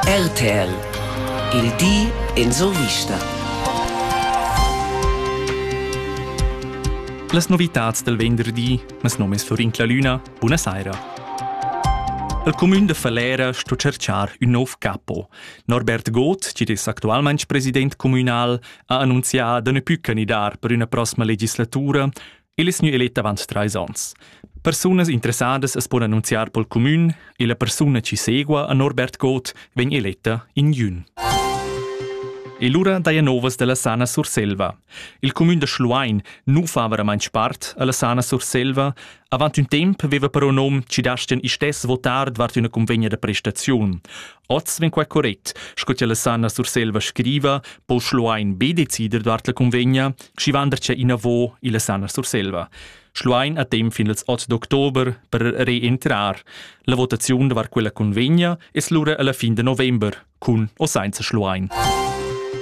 RTL Il di en survista. Las novitads del venderdi, mes nom es Florin Clalüna, buna saira. El comün de Falera sto cerchar ün nov capo. Norbert Goth, chi'd es actualmaing president communal, ha annunzià da ne pü canidar per üna prossima legislatura El es gnü elet avant trais ons. Persunas interessadas as pon annunziar pel cumün e la persuna chi segua a Norbert Goth vegn eletta in jün. E lura daja novas da la Sana Surselva. Il cumün da Schluein nu fa veramaint part a la Sana Surselva. Avant ün temp veva però nom chi dastian istess votar davart üna convegna da prestaziun. Oz vegn quai correct, sco che la Sanna Surselva scriva, po Schluein be decider davart la convegna, sch'i vandercia inavo illa Sanna Surselva. Schluein ha temp fin ils 8 d'october per reentrar. La votaziun davart quella convegna es lura alla fin de november, cun o sainza Schluein.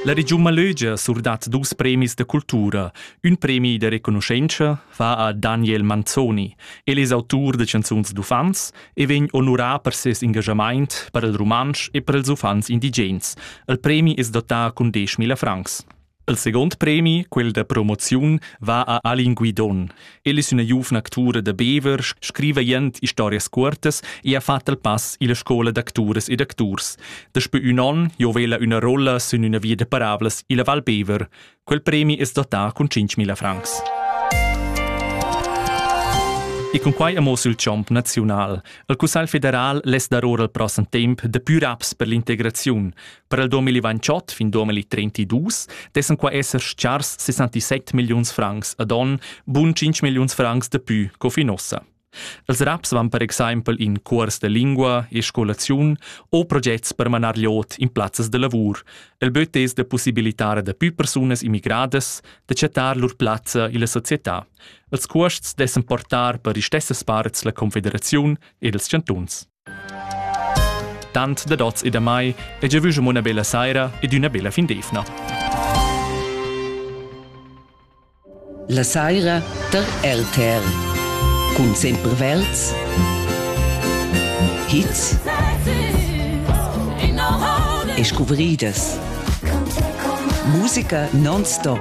La regiun Malögia surdat dus premis da cultura, ün premi da reconoscenza, va a Daniel Manzoni. El es autur da chanzuns d'uffants e vegn onurà per ses engaschamaint per il rumantsch e per ils uffants indigens. Il premi es dotà cun 10.000 francs. Il second premi, quel da promoziun, va a Alin Guidon. El es üna giuvna actura da Bever, scriva jent historias cuortas e ha fat il pass illa scoula d'acturas ed acturs. Daspö ün on giovela üna rolla sün üna via da parablas illa Val Bever. Quel premi es dotà cun 5.000 francs. E cun quai amo sul chomp naziunal. Il Cussagl federal less dar ora il prossem temp de pür aps per l'integraziun. Per il 2028 fin 2032 dessen qua esser schars 67 milliuns francs ad on, bun 5 milliuns francs de pü co fin ossa. Els raps van per exempel in cuors de lingua e scolaziun o progets per manar liot in plazzas de lavur. El böt es da possibilitar da più persunas immigradas da chattar lur plazza illa società. Els cuosts dessan portar per istessas parts la Confederaziun ed els chantuns. Tant dad oz e da mai e giavü schon una bella saira ed üna bella fin d'eivna. La saira der RTR. Cun sempre verds, hits e scuvridas. Musica non-stop.